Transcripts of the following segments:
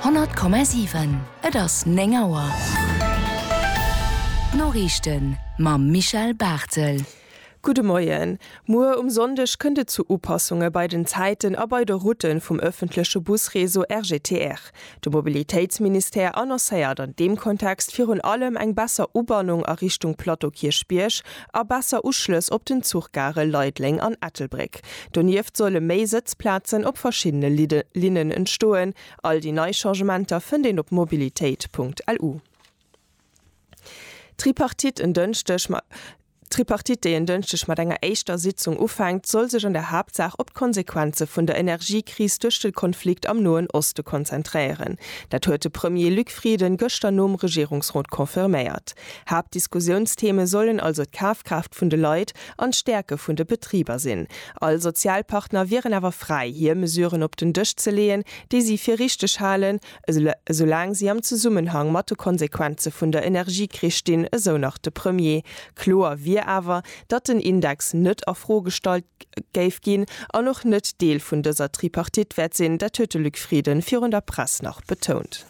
100,7 Et ass 9 Auer. D'Noriichten mam Michel Barthel. Gudde Moien. Muer um Sonndeg kënnt et zu Upassunge bei den Zäiten a bei de Route vum ëffentleche Busreseau RGTR. De Mobilitéitsministère annoncéiert an deem Kontext virun allem eng besser Ubannung a Richtung Plateau Kierchbierg a besser Uschlëss op den Zuchgare Leideleng an Ettelbréck. Donieft solle méi Sëtzplazen op verschiddene Linnen entstoen. All déi nei Changementer fënnt een op mobilitéit.lu. D'Tripartite, en Dënschdeg, D'Tripartite, déi en Dënschdeg mat enger éischter Sitzung ufänkt, soll sech an der Haaptsaach op d'Konsequenze vun der Energiekris duerch de Konflikt am Noen Oste konzentréieren. Dat huet de Premier Luc Frieden gëschter nom Regierungsrot confirméiert. Haaptdiskussiounstheme sollen also d'Kafkraaft vun de Leit an d'Stäerke vun de Betriber sinn. All Sozialpartner wieren awer fräi, hir Mesuren op den Dësch ze leeën, déi si fir richteg halen, esoulaang si am Zesummenhang mat de Konsequenze vun der Energiekris stinn, esou nach de Premier. Kloer wier awer, datt den Index net a Fro gestallt géif ginn an och net Deel vun dëser Tripartite wäert sinn, dat huet de Luc Frieden virun der Press nach betount.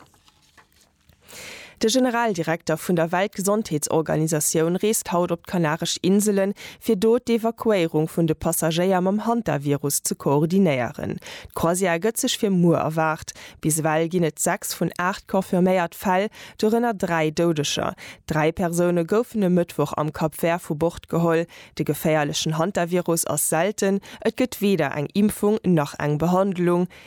De Generaldirekter vun der Weltgesondheetsorganisatioun reest haut op d'Kanaresch Inselen, fir do d'Evakuéierung vun de Passagéier mam Hantavirus ze koordinéieren. D'Croisière gëtt sech fir muer erwaart. Bis ewell ginn et 6 vun 8 confirméiert Fäll, dorënner 3 Doudeger. Dräi Persoune goufen e Mëttwoch am Cap Vert vu Bord geholl. De geféierlechen Hantavirus ass selten, et gëtt weder eng Impfung nach eng Behandlung.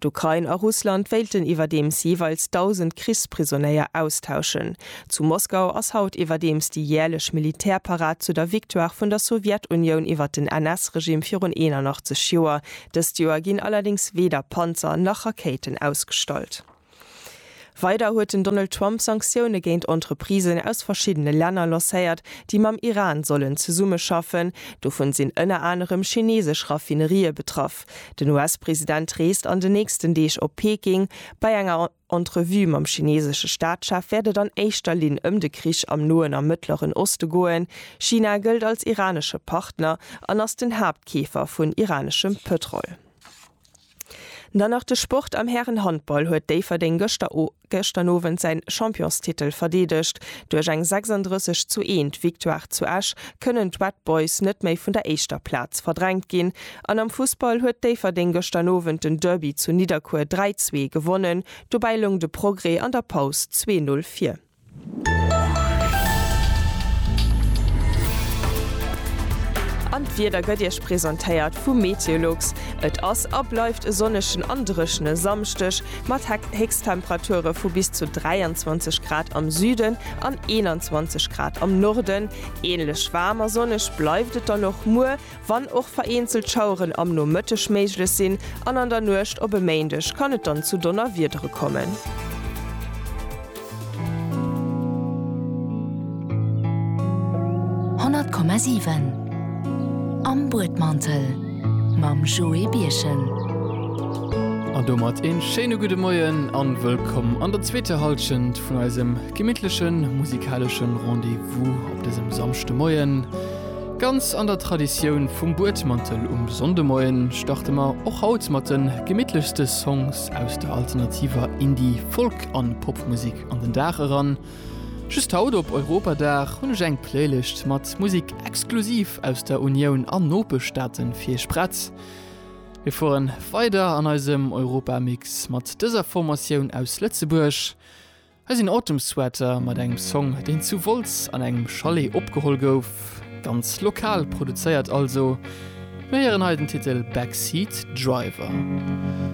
D'Ukrain a Russland wéilten iwwerdeems jeeweils 1.000 Krichsprisonéier austauschen. Zu Moskau ass haut iwwerdeems déi jäerlech Militärparad zu der Victoire vun der Sowjetunioun iwwer den NS-Regime virun 81 Joer. Dëst Joer ginn allerdéngs weder Panzer nach Rakéiten ausgestallt. Weider huet den Donald Trump Sanktioune géint Entreprisen aus verschiddene Länner lancéiert, déi mam Iran sollen zesummeschaffen. Dovun sinn ënner anerem chineesesch Raffinerië betraff. Den US-President reest an den nächsten Deeg op Peking. Bei enger Entrevue mam chineesesche Staatschef wäert et an éischter Linn ëm de Krich am Noen a Mëttleren Oste goen. China gëllt als iranesche Partner an ass den Haaptkeefer vun iraneschem Pëtrol. Dann nach de Sport, Am Härenhandball huet Déifferdeng gëschter Owend säin Championstitel verdeedegt. Duerch eng 36 zu 1 Victoire zu Esch kënnen d'Red Boys net méi vun der éischter Plaz verdrängt ginn. An am Fussball huet Déifferdeng gëschter Owend den Derby zu Nidderkuer 3, 2 gewonnen. Dobäi loung de Progrès an der Paus 2, 0 vir. An d'Wieder gëtt Iech presentéiert vu Meteolux. Et ass a bleift e sonnegen an dréchene Samschdeg mat Héchsttemperature vu bis zu 23 Grad am Süden an 21 Grad am Norden. Änlech waarm a sonneg bleift et dann och muer. Wann och vereenzelt Schaueren am Nomëtteg méiglech sinn an an der Nuecht op e Méindeg kann et dann zu Donnerwiedere kommen. Honnert Komma siwen Am Buedmantel mam Joé Birchen. An domat een schéine gudde Moien an wëllkomm an der zweeter Halschent vun eisem gemittlechen musikaleschen Rendez-vous op dësem Samschdemoien. Ganz an der Traditioun vum Buedmantel um Sonndemoien starte mer och haut mat de gemittlechste Songs aus der alternativer Indie-, Folk an Popmusek an den Dag eran. Just haut op Europadag hunn ech eng Playlëscht mat Musek exklusiv aus der Unioun an Nopeschstaaten fir iech prett. Mir fueren weider an eisem Europamix mat dëser Formatioun aus Lëtzebuerg. Hei sinn Autumn-Sweater mat engem Song, deen zu Wolz an engem Chalet opgeholl gouf. Ganz lokal produzéiert also. Mir héieren hei den Titel Backseat Driver.